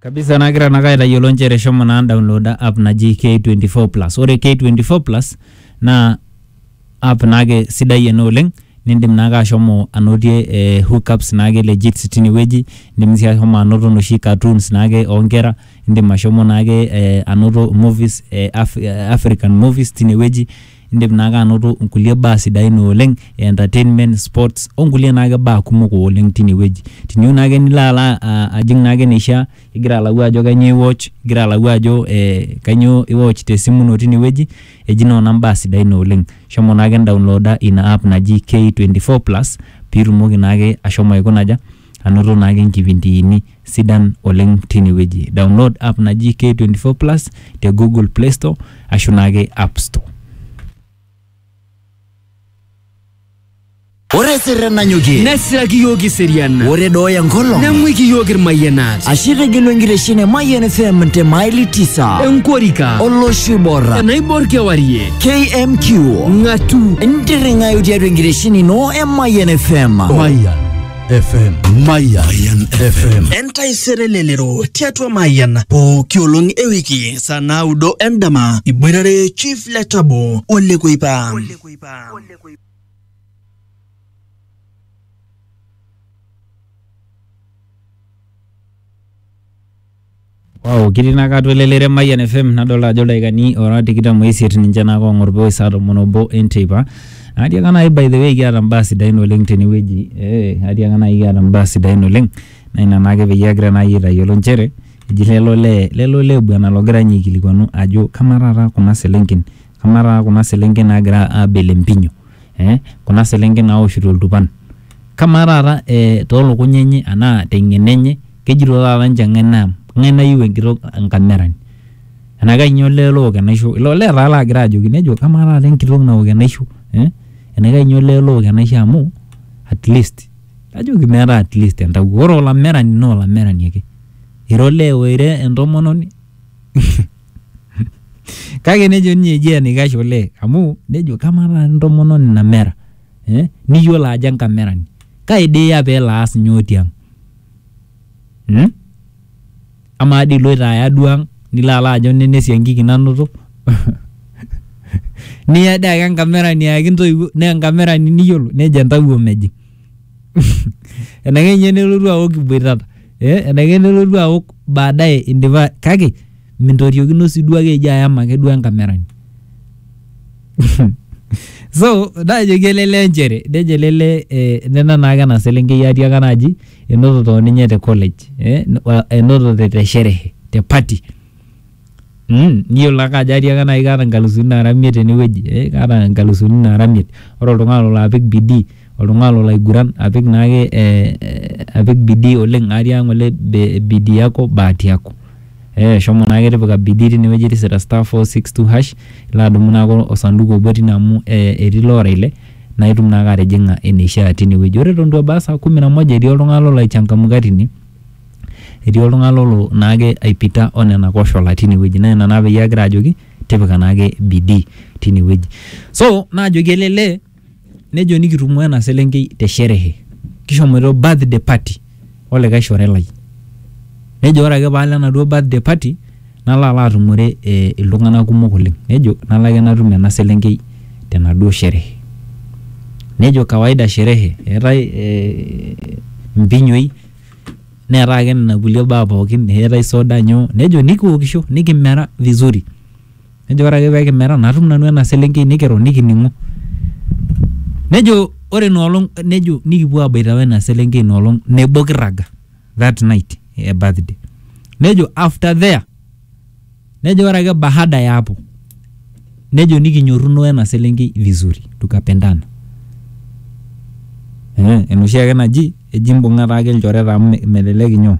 kabisa nagira nake aitayiolo nchere shomo naa downloada app naji K24 plus ore K24 plus naa app naake sidai ena oleng nindim naake ashomo anotie eh, hookups naake legit tinewueji indim sii ahomo anoto inoshi cartoons naake onkera indim ashomo naake eh, anoto movies eh, Af- African movies tinewueji. Indim naake anoto nkulie baa sidain ooleng e entertainment, sports o nkulie naake baa kumok ooleng tine wueji. Tiniyieu naake nilo alo aa ajing naake eneishia igira alau ajo kanyoo iwatch, igira alau ajo ee kanyoo iwatch te simu ino tine wueji eji nona mbaa sidain ooleng. Shomo naake indaonloda ina app naji K24 plus piitumoki naake ashomo aikuna aja, anoto naake nkipindiini. sidan oleng tine wueji. Download app naji K24 Plus te Google Play Store ashu naake App Store. Ore esirren nanyokie, nesiraki iyiook iserian ore dooya enkolong, neng'uiki iyiook irmayianat ashe itegelu enkitesheni e Mayian FM te maili tisa enkorika olosho oibor enaibor kewarie KMQ ng'atu ntirring'ayu tiatua enkitesheni ino e Mayian FM. Mayian FM. Mayan, FM. entaisere lelero tiatua mayian pooki olong e wiki saa naudo endama iboitare chief letabo olekuipa Wow, kitii ina kata elelere Mayian FM nadolta ajo ildaikani ora tikitam oisiet ninche naake oong'or pee ewosh saa tomon obo enteipa. Atiaka nai by the way kiata mbaa sidain oleng' tene wueji ee atiaka nai kiata mbaa sidain oleng' naa ina naake peyie agira nai aitayiolo inchere eji lele olee lele olee bwana logira nye aikilikuanu ajo kamaa taata kuna selenken kamaa taata kuna selenken naagira aabel empinyo. eh kuna selenken naoshito iltupan kamaa taata eh tolukuny enye anaa teng'eno enye kejito taata ninche ng'ae naa ng'ae nayieu enkitok enkamerani enaa kainyioo olee look enaisho ilo olee taa lagira ajoki nejo kamaa taata enkitok naok enaisho eh enaa kainyioo olee look enaisho amu atleast najoki meeta atleast entawuo ore olamerani naa olamerani ake ira olee oira entomononi. Kake nejo ninye eji enaikash olee amu nejo kamaa taata entomononi namera eh, niyiolo ajo enkamerani kai dii iya peelo aas nyoo tiang mm? Amaa dii iloito aya duo ang nilo alo ajo nena esiankiki nanoto niya dii ake enkamerani ayaki intoiwuo naa enkamerani niyiolo nejo entawuo mejing. enaikash ninye nelotu aok iboitata eh, enaikash nelotu aok baadaye indipa kake mintoriokino sii duo ake eji ayam ake duo enkamerani so naajoki ele lee nchere nejo ele lee eh, nena naake ena selenkei atiaka naaji enotote oninye te college eh, enotote te sherehe te party Mm, niyiolo ake ajo atiaka nai kaata nkalusuni nara imiet tenewueji eh, kaata nkalusuni nara imiet ore oltung'ani lolo apik bidii oltung'ani lolo aiguran apik naake eh, eh, apik bidii oleng atii ang ng'ole be bidii yako bahati yako eh, shomo naake tipika bidii tinewueji tisira star four six two hash ilo adumu naake osanduku obo tine amu eh, etii ilo ora ile naitum naake atijing'a eneishia tinewueji ore eton itu ebaya saa kumi na moja etii oltung'ani lolo aechangamka tine. etii oltung'ani lolo naake aipita o nena koshola tine wueji naa ina naa peyie agira ajoki tipika naake bidii tine wueji. So naajoki ele lee nejo nikitumo ena selenkei te sherehe, kishomoito birthday party o likai shore lai. Nejo ore ake paalo enaduo birthday party nalo alo atumore ee iltung'anak kumok oleng', nejo nalo ake natum ena selenkei tenaduo sherehe. Nejo kawaida sherehe eetai ee mpinyoi. neetai ake nena kulie baa pookin eetai soda nyoo nejo nikiwokisho nikimera vizuri nejo ore ake peekimera natum nanu ena selenkei nikiro nikining'o nejo ore ina olong nejo nikipuo aboita wena selenkei ina olong nebo kirraga that night e birthday nejo after there Nejo ore ake baada ya hapo nejo nikinyorruno wena selenkei vizuri tukapendana. Eh, enoshi ake naji eji imbung'a taake ilchoreta amu me- melelek inyoo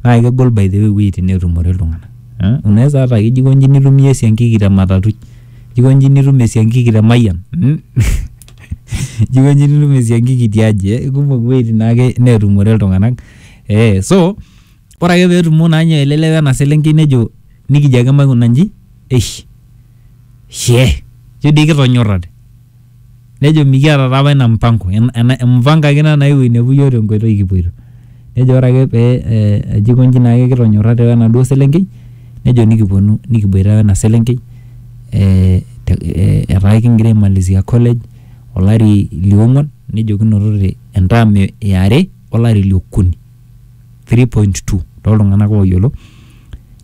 naa kegol by the way iwueitin neetumore iltung'anak eh, unaweza hata ake ijo aikonji nitum iyie esiankiki te matatui, ijo aikonji nitum esiankiki te mayian mm, ijo aikonji nitum esiankiki tiaji eh, kumok iwueitin naake neetumore iltung'anak eh, so Ore ake petumo naa ninye ele lewa ena selenkei nejo nikijo ake maikuna inji eish shee ijo dii kitonyorrate nejo mikiata taa apa ina mpango ena empango ake ina naewuo ainepu iyiok tenkoitoi kipuoito nejo ore ake pee eh ejo aikonji naake kitonyorrate wenaduo selenkei nejo nikiponu nikiboita wena selenkei eh te eh etaa kingira aimalizia college olari liong'uan nejo kinotote en term iare olari liokuni. 3.2 tooltung'anak ooyiolo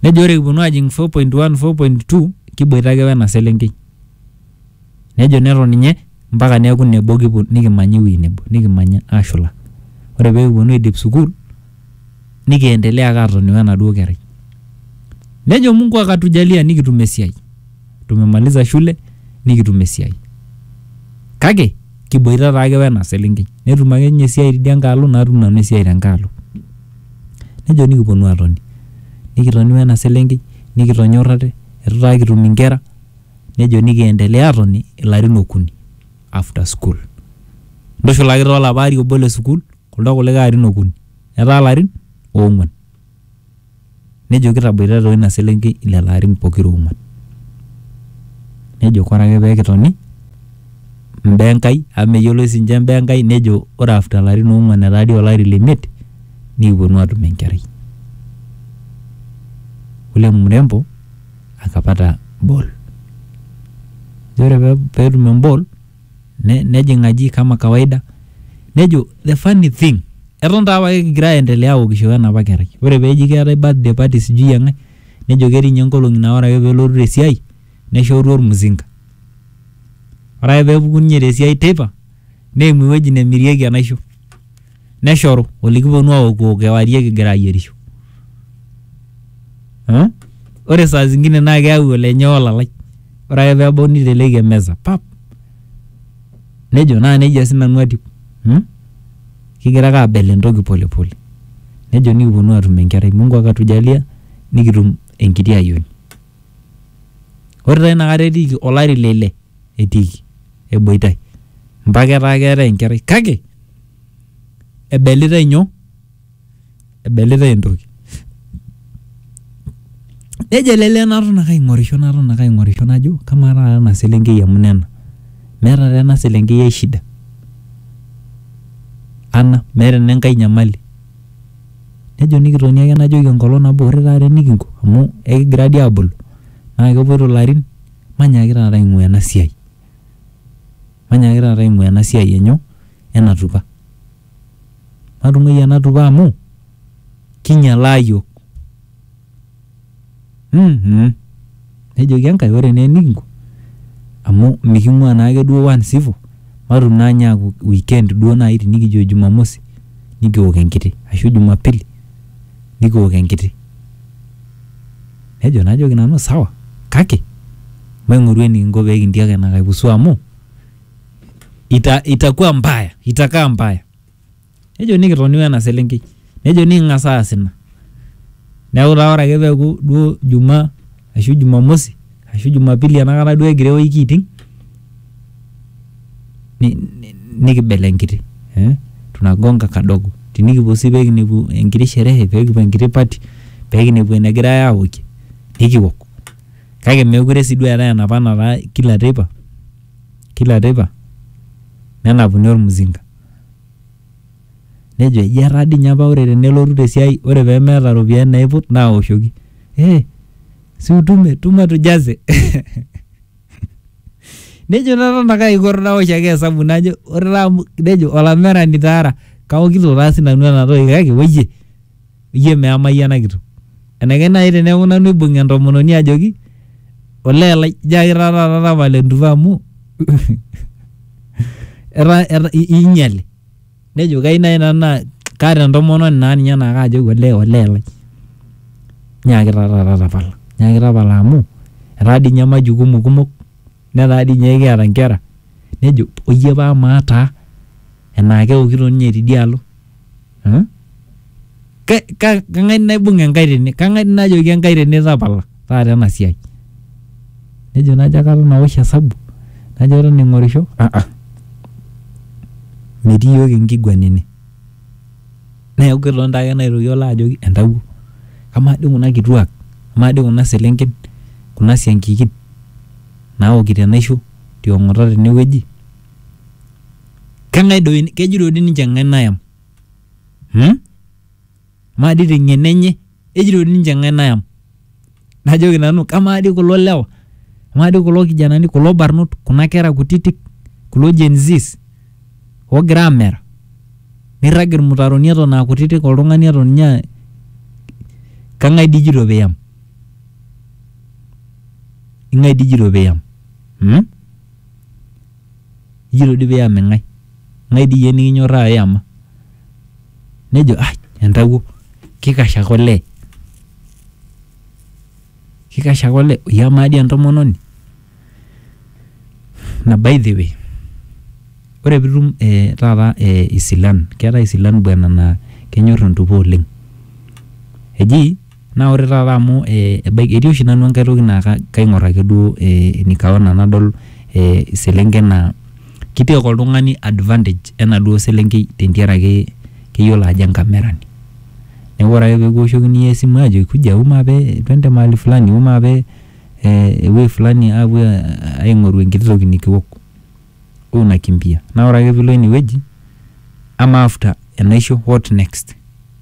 nejo ore kiponu aajing 4.1 4.2 kiboita ake wena selenkei nejo neton ninye mpaka neeku nebo kipu- nikimanya ewueji nebo nikimanya aashula ore pee kiponu aidip sukuul nikiendelea ake atoni wenaduo kerai nejo mungu akatujalia nikitum esiai tumemaliza shule nikitum esiai kake kiboita taake wena selenkei netum ake ninye esiai tidia nkae alo natum nanu esiai tenkae alo nejo nikiponu atoni nikitoni wena selenkei nikitonyorrate etu taa kitum inkera nejo nikiendelea atoni ilarin okuni after school ntushulaki taa olapa ari obo le sukuul kuldo kulikae arin okuni etaa ilarin oong'uan Nejo kitaboitata o ina selenkei lelo arin pokira ong'uan. Nejo kore ake pee kitoni mbaa e Nkai amu meyioloi siininche mbaa e Nkai nejo ore after ilarin oong'uan etaa dii olari le imiet nikipwonu aatum enkerai. Ule mrembo akapata ball. Ore peetum emball ne, nejing aji kama kawaida nejo the funny thing eton taa apake kigira aendelea aokisho wenapa kerai ore peji keetae birthday party sijui eng'ae nejo ketii ninye nkolong'i naa ore ake pelotu tesiai neshoru ormuzinga ore ake pepuku ninye tesiai teipa neimu ewueji nemirieki enaisho. neshoru olikiponu aokuo kewarie kigira ayierisho Eh? ore saa zingine naa keyau olenye olalai ore ake peebau niteleki emeza pap nejo naa nejia sinanu atiu hmm? kigira ake abel entoki polepole nejo nikiponu atum enkerai mungu akatujalia nikitum enkiti ayioni ore taa inakata etiiki olari le ile etiiki eboitai mpaka etaa keetae enkerai kake ebelitai nyoo? ebelitai entoki. Nejo ele lee naton ake aing'orisho naton ake aing'orisho najo kamaa taata ena selenkei amu nena meeta taa ena selenkei ae shida ana meeta ena enkae nyamali. Nejo nikitoni ake najoki enkolong nabo ore taata enikinko amu ekigira dii aabulu naa kepuoito ilarin Manyaaki taata aing'ua ena siai. Manyaaki taata aing'ua ena siai enyoo? Ena tupa. Matung'uai ena tupa amu kinyalaa iyiook. Ummh. Nejoki Enkai ore naa enikinko amu miking'ua naake duo once ivo, matum naa ninye aaku weekend duo naai tinikijo Jumamosi nikiok enkiti ashu Jumapili nikiok enkiti Nejo, Najoki nanu, Sawa, kake maing'oru enikinko pee kintiak ina kai pusu amu ita, itakuwa mbaya, itakaa mbaya. Nejo nikitoni we ena selenkei. Nejo niking'as aas ina. Neeku taa ore ake peeku duo Jumaa ashu Jumamosi ashu Jumapili enakata duo egira ewiki aiting ni- ni- nikibel enkiti eh? tunagonga kadogo tinikipuo sii pekinepu enkiti sherehe pekipuo enkiti party pekinepu enegirae awokie nikiwok kake mekure sii duo eetae enapa nataa kila teipa kila teipa nenapuni ormuzinga nejo eji etaa dii inye apa ore tenelotu tesiai ore pemeeta iropiyiani naiput naoshoki eh, si utume tuma tujaze nejo taata nake aiko nawosh ake hesabu najo ore taa amu nejo olamerani taa ara kaokito taa sinanu ena toki kake woyie iyie meamai ena kitok enaikash naaji teneeku nanu aibung'a entomononi ajoki olee lai jaki taa taata tapala entupa amu etaa etaa i- inyiale nejo kai nai nanu naa kaata entomononi naa ninye naa kaajoki olee olee lai nyaaki taa taata tapala nyaaki tapala amu etaa dii ninye majukumu kumok netaa dii ninye kiata inkera nejo oyie paa amaa taa enaa kewokito ninye tidialo hmm? kang'ae naibung Enkai tene? Kang'ae najoki Enkai tene tapala taata ena siai? Nejo najo aton awosh hesabu, najo aton aing'orisho, ah ah metii iyiook enkiguana ene. Neeku ketonita ake naitoki alo ajoki entawuo, amaa dii kuna kituak, amaa dii kuna selenken, kuna siankikin naokito enaisho tiong'ota tenewueji, kang'ae doi, kejoito doi ninche kang'ae nayam? hmm? amaa dii teng'eno enye ejito ninche eng'ae nayam najoki nanu kamaa dii kulo lewa amaa dii kulo kijanani kulo barnot kuna kera kutitik kulo Gen Zs oogira amera nirrag irmutaroni eton aa kutitik oltung'ani eton ninye aa- kang'ae dii ijito piyam ing'ae dii ijito piyam hmm? Iyiolo dii pee iyam eng'ae, ng'ae dii iyie nikinyorraa iyama? Nejo ai entawuo kikash ake olee, kikash ake olee iyamaa dii entomononi. Naa by the way ore piitum ee taata ee isilan keetai isilan bwana naa kenyor entupore oleng'. Eji Naa ore taata amu ebaiki etii oshi nanu enkae toki naa kaing'or ake duo nikaona nadol iselenken naa ki take oltung'ani advantage enaduo selenkei tentiaraki keyiolo ajo enkamerani. Neeku ore ake pee kiwoshokini iyiook esimu aajoki kuja wou maape twende mahali fulani, wou maape ewuei fulani aapuo aing'oru enkiti toki nikiwok. Wou nakimbia. Naa ore ake piilo ine wueji, ama after enaisho what next?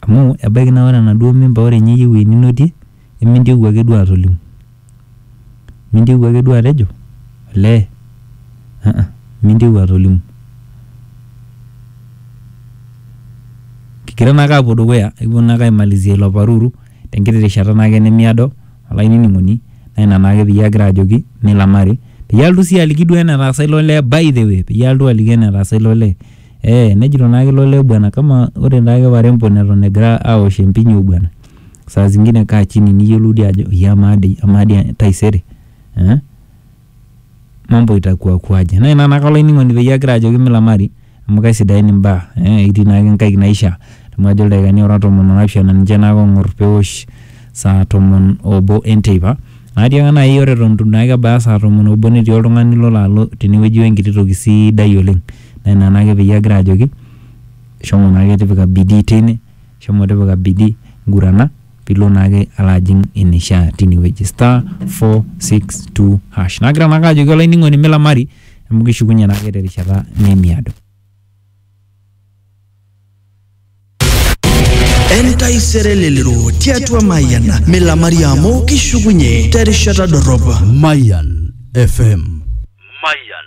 Amu ebaiki naa ore enaduo mimba ore ninye iyie ewueji ninotie emintieu ake duo atolimu. Mintieu ake duo atejo olee uh uh mintieu atolimu. Kigira naake aapuo dukuya ekipuo naake aimalizia ilo paruru tenkiti rishata naake nemiado olainining'oni naa ina naake peyie agira ajoki milamari peyie alotu sii aliki duo enetaasa ilo lee by the way peyie alotu aliki enetaasa ilo lee Ee, nejito naake ilo lee bwana kama ore naake warembo neton egira aosh empinyo bwana. Saa zingine kaa chini niyiolou dii ajo iya amaa dii amaa dii taisere. Eh? Mambo itakuwa kuaje. Naa ina naake olainining'oni peyie agira ajoki milamari amu kaisidain imbaa. Eh, itii naake inkaik naishaa. Amu ajo ildaikani ora tomon o naapishana ninche naake oong'or peosh saa tomon obo enteipa. Naatiaka naai ore eton itu naake ebaya saa tomon obo netii oltung'ani lolo alo tenewueji wenkiti toki sidai oleng. Naa ina naake peyie agira ajoki shomo naake tipika bidii teine, shomo tipika bidii ngurana piilo naake alo ajing eneishaa tine wueji. Star, four, six, two, hash. Nagira naake ajoki olainining'oni milamari amu kishukunye naake terishata nemiado. Entaisere elelero tiatua Mayian milamari amu kishukunye terishata dorrop. Mayan FM. Mayan